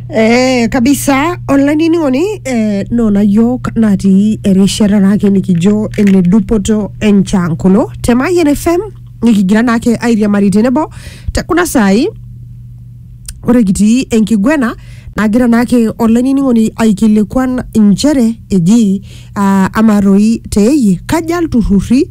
Eh, kabisa olainining'oni eh, nona yiok natii erishata naake nikijo ene dupoto enchankolo te Mayian FM nikigira naake airiamari tenebo te kuna saai ore kitii enkiguena nagira naake olainining'oni aikilikuan inchere eji uh, ama toi teeyie kaja ilturrurri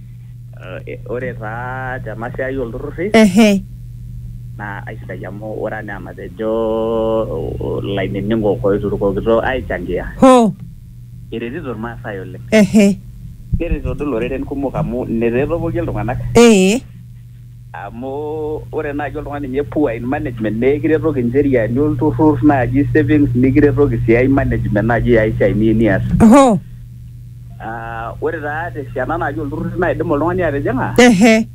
Eh, ore taa tena siai olturrurri Ehe. naa aisidai amu ore anaa enatejo ilainining'ok oiturukokito aichangia Hoo. eretito Irmaasai oleng. Ehe. Neretito doi iloreren kumok amu ine taa etopokie iltung'anak. Ee. Amu ore naaji oltung'ani ninye poor in management naa ekiretoki incheriani olturrur naaji savings nikiretoki sii ai management naaji ai siai niyieu nias. Oho. Ah, ore taa te siana naaji olturrur naidim oltung'ani atijing'a Ehe.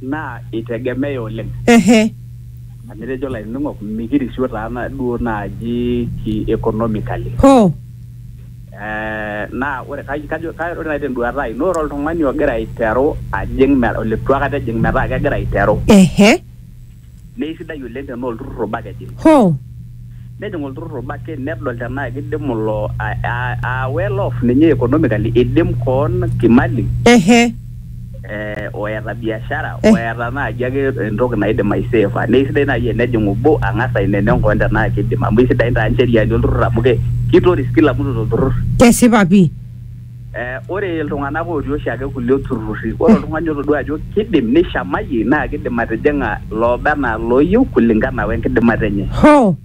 naa itegemea oleng. Ehe. Amu etejo ilainining'ok mikirisio taa duo naaji ki economically. Hoo. Naa ore naaji tenduata ai naa ore oltung'ani ogira aiteru ajing oleitu aikata ejing metaa kegira aiteru. Naa eisidai oleng tenaa olturrur obo ake ejing. Nejing olturrur obo ake nedol tenaa kidim ilo aa well off ninye economically eidim koon kimali eh, oeta biashara Eh. oeta naaji ake entoki naidim aiseefa naa isidai naaji enejing obo ang'as aineneng koon tenaa kidim amu isidain taa ncheriani olturrur amu ke- kitoris kila mtu tolturrur kesipa pii Eh, ore iltung'anak otii oshiake kulie turrurri ore oltung'ani otodua ajo kidim nishamayie naa kidim atijing'a looba enaa looyieu kulingana wenkidimata enye hoo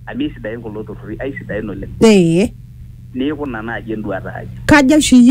amu isidain kulo turrurri aisidain oleng ee neeku ina naaji enduata ai kajo oshi iyie